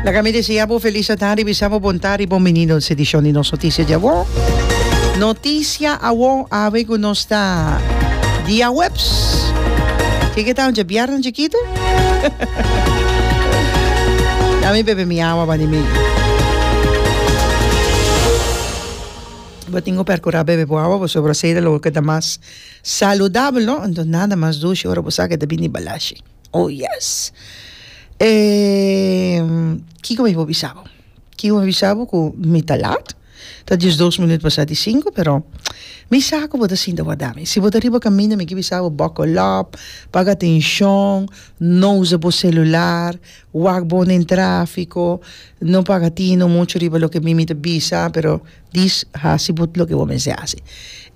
Laga mi desea bo felis adan ribisa bo bonta riba un mini nos edishon di nos notisia di awo. Notisia awo awe ku nos ta dia weps. Ke ke ta un dje bièrnè chikitu? Ya mi bebe mi awa bani mi. Bo tin ku pèrkura bebe bo awa pasobra asei ta lo ke ta mas saludabel no. Anto nada mas dushi ora bo sa ke ta bini balashi. Oh yes kiko mi por bisa bo kiko mi por bisa bo ku mi ta lat ta diesdos minut pasá di sinku pero mi sa ku bo ta sinta warda mi si bo ta riba kaminda mi ke bisa bo buckle up paga atenshon no usa bo selular wak bo den trafiko no paga atino muchu riba loke mi mi ta bisa pero Dis hasi bo loke bo mester hasi.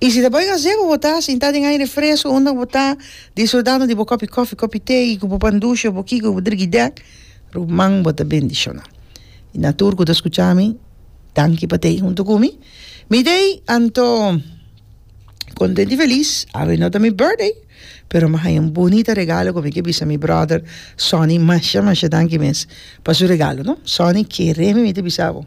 I si ta bay gazebo bo ta sinta den aire fresco unda bo ta disfrutando di bo kopi kofi, kopi te i ku bo pan dushi o bo kiko bo drigi dek, ruman bo ta bendishona. I na tur ku ta skucha mi, danki pa ta ei huntu ku mi. Mi ta ei anto kontent i felis, awe no ta mi birthday, pero mi haña un bunita regalo ku mi ke bisa mi brother Sonny masha masha danki mes pa su regalo no. Sonny, kere mi mi ta bisa bo.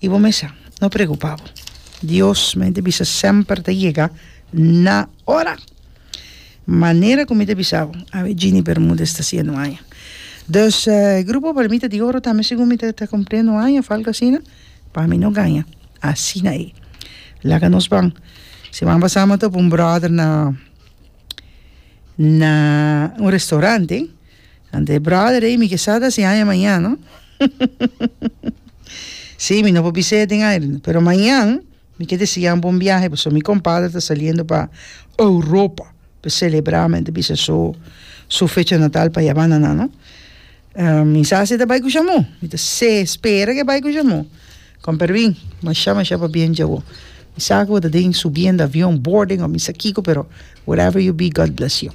I bo mester no preocupa bo. Dios, mi ta bisa, semper ta yega na ora. Manera cu mi ta bisa bo, awe Gini Bermudez ta haciendo aña. Dus, grupo por mi ta di oro tambe segun mi ta cumpliendo aña, of algo asina, pa mi no gaña. Asina e. Laga nos ban. Semana pasado mi a topa un brother na un restaurante. Ante e brother ey mi kesa ta haci aña mañan no si mi no por bis'e den aire no pero mañan mi ke desi jam bon biahe pasobra mi compadre ta saliendo pa Europa pa e celebra men ta bisa so su fecha natal pa yabanda nan no mi sa si e ta bay cu shamu mi ta se spera ke bay cu shamu con permi masha masha pabien dje awo mi sa cu bo ta den subiendo avion boarding o mi sa kico pero whatever you be God bless you.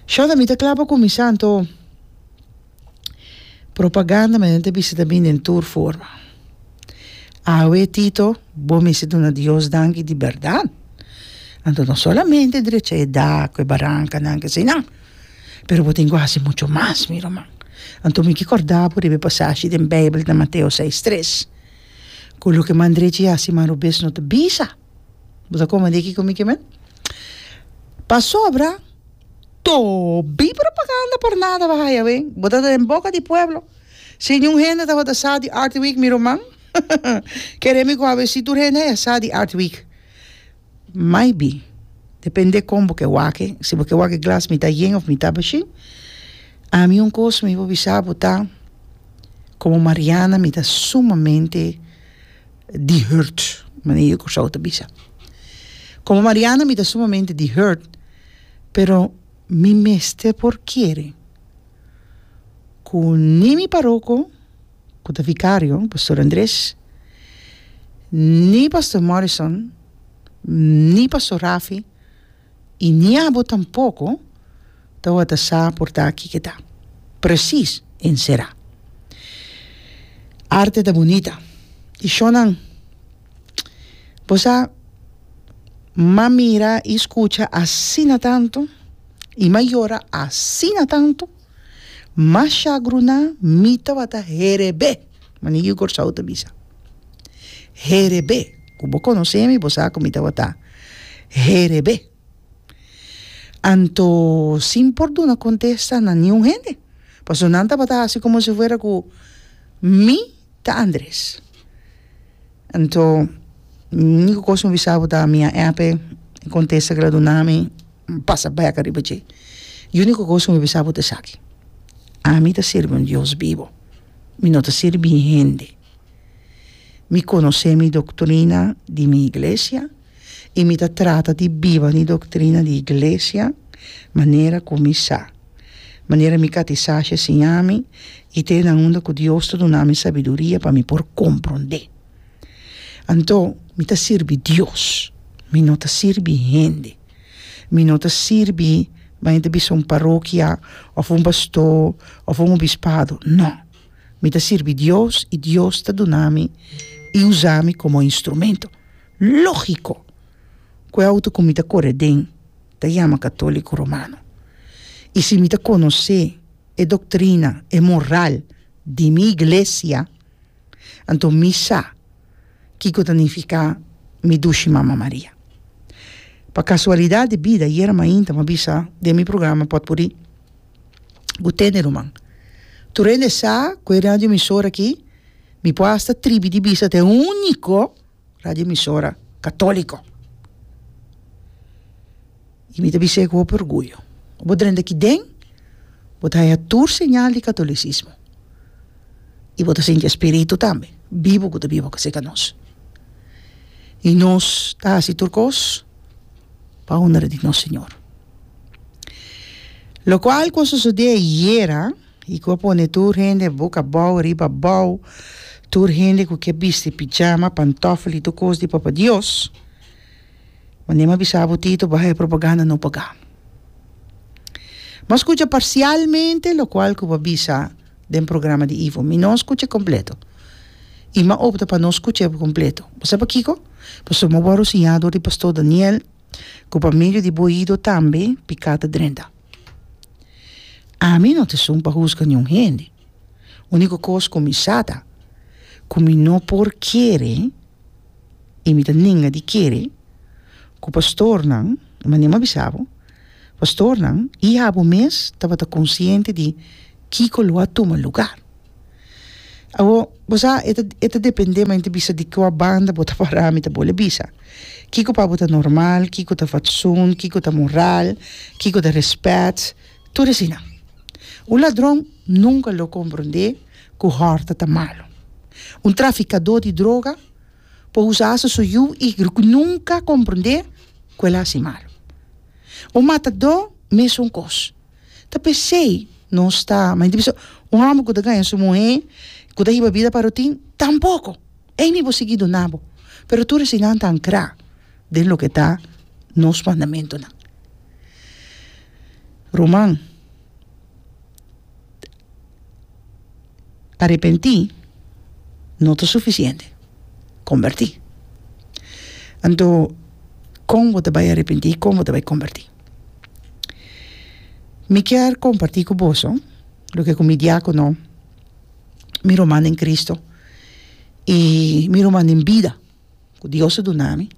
Shonda mi ta kla pa kuminsá anto propaganda mi no ta bisa ta bini den tur forma awe Tito bo mester duna Dios danki di bèrdat anto no solamente drecha e dak ku e barankanan ke asinal pero bo tin ku hasi muchu mas mi ruman anto mi ke kòrdá bo riba e pasashi den Beibel ku ta Mateo seis tres ku loke man drecha i hasi man robes no ta bisa. Bo ta kome di aki ku mi ke men? Pasobra tobie propaganda por nada bo haya awe. Bo ta den boka di pueblo. Si niun hende tabata a sa di Art Week mi ruman, kere mi ku awe si tur hende haya sa di Art Week. Maybe, depende kon bo ke wak, si bo ke wak e glas mita yen òf mita bashe. Ami un kos mi por bisa bo ta, komo Mariana mi ta sumamente. di hurt, mane e Kòrsou ta bisa. Komo Mariana mi ta sumamente di hurt, pero mi mester por kere ku ni mi paroko ku ta vikario, Pastor Andres, ni Pastor Morrison, ni Pastor Rafi, i ni abo tampoko tawata sa por ta aki keda presis enserá. Arte ta bunita i shonnan bo sa mas mira i skucha asina tantu i mas yora asina tantu, mas shagruná mi tawata herebé. Manigio Kòrsou ta bisa, Herebé, ku bo konosé mi, bo sa ku mi tabata herebé. Anto sin por duna kontesta na niun hende, pasobra nan tabata hasi komo si fuera ku mi ta Andres. Anto, úniko kos mi bisa bo ta, mi a èp e kontesta ku el a duna mi. N pasa bèk riba dje. E úniko kos ku mi bisa bo ta esaki, ami ta sirbi un Dios bibu, mi no ta sirbi hende. Mi konosé mi doktrina di mi iglesia i mi ta trata di biba mi doktrina di iglesia manera ku mi sa, manera mi katisá shi a siña mi i te nan unda ku Dios ta duna mi sabiduria pa mi por komprondé. Anto mi ta sirbi Dios, mi no ta sirbi hende. Mi no ta sirbi baña ta bisa un parokia of un pastó of un obispado, no. Mi ta sirbi Dios i Dios ta duna mi i usa mi komo instrumento. Lógiko ku e outo ku mi ta kore den ta yama Katóliko Romano. I si mi ta konosé e doktrina, e moral di mi iglesia, anto mi sa kiko ta nifiká mi dushi Mama Maria. Pa kasualidat di bida yera mainta m'ha bisa den mi programa Potpurrí ku Tene Ruman. Tur hende sa ku e radioemisora aki mi por hasta tribi di bisa ta e úniko radioemisora katóliko. I mi ta bis'é ku hopi orguyo, bo drenta aki den, bo ta haña tur señal di katolisismo, i bo ta sinti e Spiritu tambe bibu ku ta biba pa seka nos. I nos ta hasi tur kos pa honra di nos Señor. Lokual ku a sosodé ayera i ku a pone tur hende boka abou riba abou, tur hende ku ke bisti pijama, pantòfel i tur kos di Papa Dios, Mandi a bisa bo Tito baha e propaganda no paga. Bo a scucha parcialmente locual cu bo a bisa den programa di Ivo. Mi no scucha completo. Y mi a opta pa no scucha e completo. Bo sa pakico? Pasobra mi a wor rosiña dor di Pastor Daniel cu pa medio di bo oido tambe pica ta drenta. Ami no ta esun pa huzga niun hende. Unico cos cu mi sa ta cu mi no por kere i mi ta nenga di kere ku pastornan, i manera mi a bisa bo, pastornan i abo mes tabata konsiente di kiko lo a tuma lugar. Awo, bo sa, e ta, e ta depende, mi ta bisa di kua banda bo ta pará, mi ta bole a bisa. Kiko pa bo ta normal, kiko ta fatsun, kiko ta moral, kiko ta rèspèt, Tur esina. Un ladron nunka lo komprondé ku hòrta ta malu. Un trafikadó di droga por usa asa su yu i nunka komprondé ku el a hasi malu. Un matadó mesun kos. Ta p'esei nos ta manda di bisa un hòmber ku ta gaña su muhé ku ta hiba bida parotin, Tampoko! Ei mi bo sigui duna bo. Pero tur esinanan ta ankrá den loke ta nos mandamentunan. Ruman, arepentí no ta sufisiente, kombertí. Anto, kon bo ta bai arepentí i kon bo ta bai kombertí? Mi kier kompartí ku boso loke ku mi diákono, mi ruman den Kristu i mi ruman den bida. ku Dios a duna mi,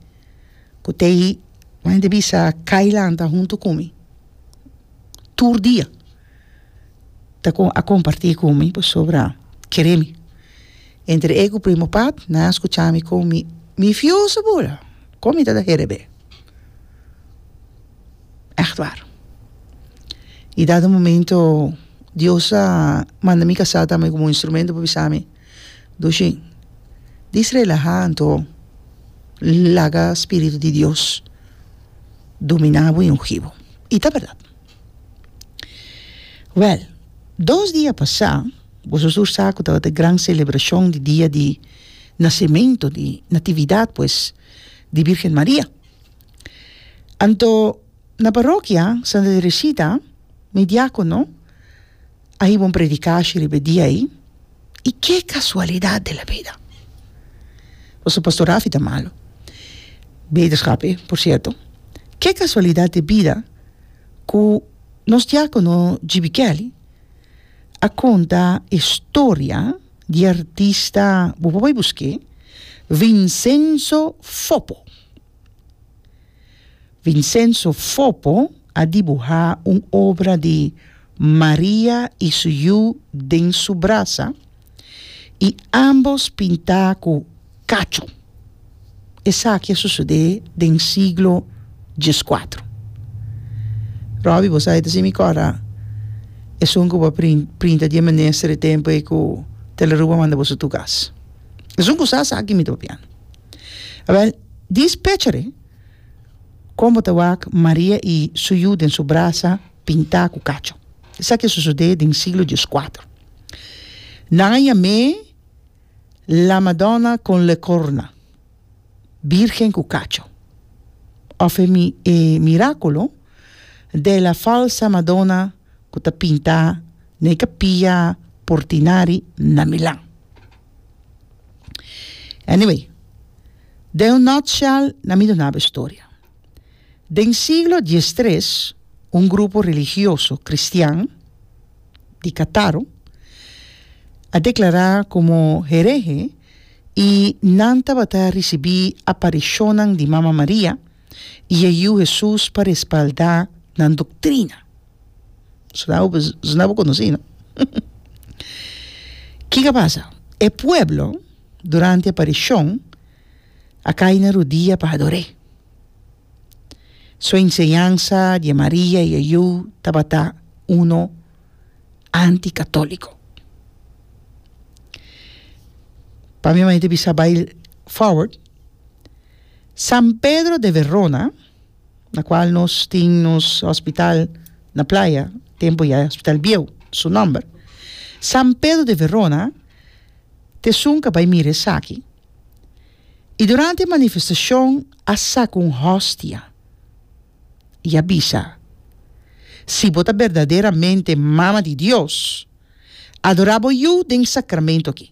ku ta i ku hende bisa kai lanta huntu ku mi tur dia ta kon a kompartí ku mi pasobra kere mi. Entre e ku Primo Pat nan a skucha mi kon mi mi fioso bura kon mi ta da herebé. Ègt war. I dado momento Dios a manda mi kasá tambe komo un instrumento pa bisa mi Dushin, dis relahá anto laga spiritu di Dios dominá bo i ungí bo. I ta bèrdat. Wèl, dos dia pasá, boso sur sa ku tabata e gran selebrashon di dia di nasementu, di natividat pues, di Bírgen Maria. Anto, na parokia Santa Teresita, mi diákono, A hiba un predikashi riba e dia ei, i ke kasualidat di la bida! Pasobra Pastor Rafi ta malu, beterskap e, por sierto. Ke kasualidat di bida ku nos diákono GB. Kelly a konta e storia di e artista, bo por bai busk'é, Vincenzo Fopo. Vincenzo Fopo a dibuhá un obra di Maria i su yu den su brasa i ámbos pintá ku kacho. Esaki a sosodé den siglo dieskuatro. Robbie, bo sa e ta sin mi kòr, a. Esun ku bo a prin, printa di e mester e tempu ei ku Tele Aruba manda boso tur kas. Esun kusasa aki mi ta papia. Awèl. Dispechere, Kon bo ta wak Maria i su yu den su brasa pintá ku kacho? Esaki a sosodé den siglo dieskuater. Nan a yam'é La Madonna con le corna, Bírgen ku kacho, òf e mirakulo de la falsa Madonna. ku ta pinta na e kapia Portinari na Milan. Anyway, den un nutshell nan mi dunaba e storia. Den siglo diestres un grupo religioso kristian di Kataro a deklará komo herehe i nan tabata risibí aparishonnan di Mama Maria, i e Yiu Hesus pa respaldá nan doktrina. Suna bo suna bo konosí, no? Kiko a pasa? E pueblo, durante e aparishon, a kai na rodia pa ador'é. Su enseñansa di e Maria i e Yiu tabata unu anti-katóliko. Pasobra mi manda e bisa bai fòward. San Pedro de Verona, na cual nos tin nos hospital na Playa, tempo ya e hospital bieu, su nomber. San Pedro de Verona t'esun ca bai mira esaki. Y durante e manifestacion a saca un hostia y a bisa, Si bo ta berdaderamente Mama di Dios, adora bo Yu den e sacramento aki.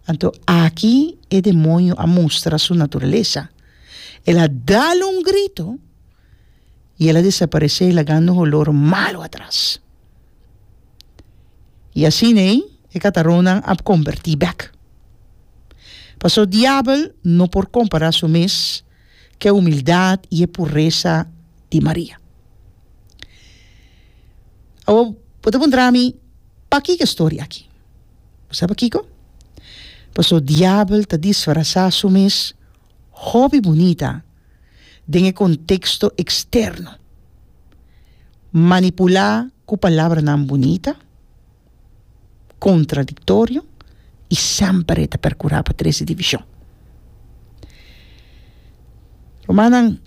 Anto aki e demonio a mustra su naturalesa. El a dal un grito i el a desaparesé lagando un olor malu atras. I asin ei e kataronnan a kombertí bèk. Pasó diabel no por kompará su mes ku e humildat i e puresa di Maria. Awor, bo ta puntra mi, P'aki ku e storia aki? Bo sa pakiko? Paso diabel ta disfrasá su mes hopi bunita den e konteksto eksterno, manipulá ku palabranan bunita, contradictorio y semper e ta percura pa trece division. Rumannan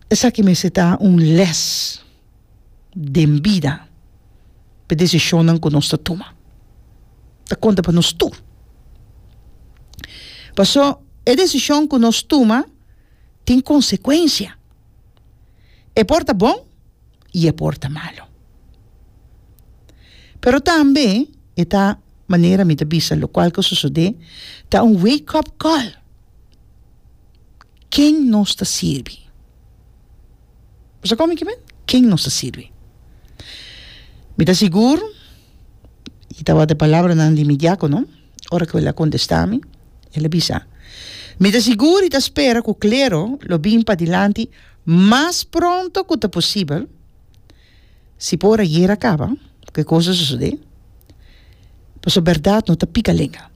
esaki mester ta un les den bida pa e decisionnan cu nos ta tuma. Ta conta pa nos tur. Paso e decision cu nos tuma tin consecuencia. E por ta bon. i e por ta malu. Pero tambe e ta manera mi ta bisa lokual ku sosodé ta un wake up call ken nos ta sirbi. Bo sa kon mi ke men? Ken nos ta sirbi. Mi ta sigur i tabata e palabranan di mi diákono ora ku el a kontestá mi, el a bisa, Mi ta sigur i ta spera ku klero lo bin padilanti. mas pronto ku ta posibel, si por ora guera kaba, ku e kos a sosodé, pasobra bèrdat no ta pika lenga.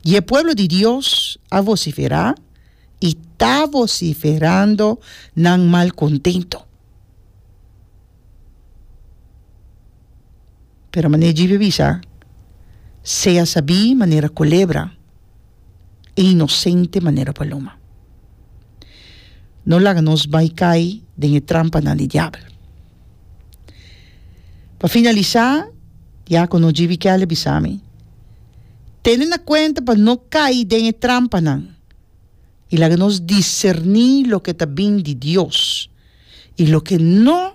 I e pueblo di Dios a vosiferá i ta vosiferando nan malkontentu. Pero mane djibe bisa, sea sabí manera culebra e inocente manera paloma. No laga nos bai cai den e trampanan di diabel. Pa finalisa, diacono Djiby Keller bisa mi, Tene na cuenta pa no cai den e trampanan y laga nos discerní loke ta bin di Dios y loke no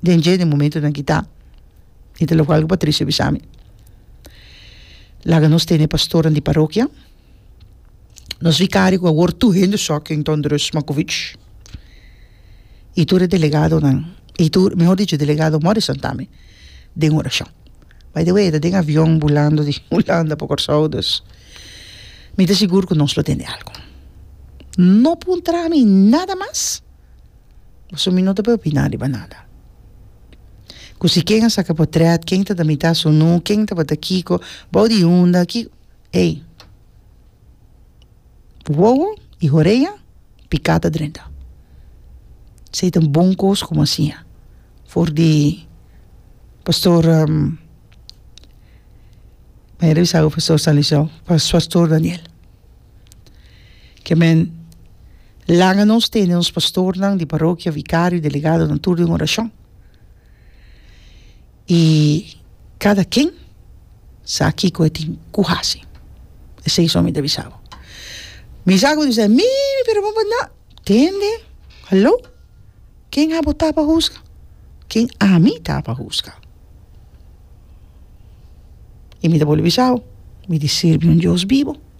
den dje den momentonan ki ta y ta loke algo pa triste bisa mi laga nos tene pastornan di parokia nos vicario cu awor tur hende soc en thunderous makovich y tur e delegadonan y tur mehor dicho delegado morrison tambe den oracion by the way e ta den avion bulando di hulanda pa Corsou dus mi ta sigur cu nos lo tende algo no puntra mi nada mas. Pasobra mi no ta por opiná riba nada. Ku si ken a saka potrèt, ken ta tramitá sunu, ken tabata kiko, bou di unda, ki, ey, wowo i horea piká ta drenta. Esei ta un bon kos ku bo a siña for di Pastor Daniel. Ke men laga nos tene nos pastornan di parokia, vikario, delegadonan tur den orashon. I kada ken sa kiko e tin ku hasi. Esei so mi ta bisa bo. Mi sa ku bo ta bisa, mi, mi pero bo bandá. Tende, haló, ken abo ta pa husga? Ken ami ta pa husga? I mi ta bolbe bisa bo, mi di sirbi un Dios bibo.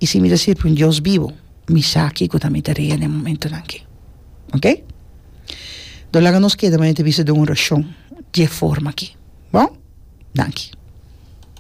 I si mi ta sirbi un Dios bibu, mi sa kiko ta mi ta rea den momentunan aki. Ok? Dor laga nos keda manera ta bisa den un orashon dje forma aki. Bon? Danki.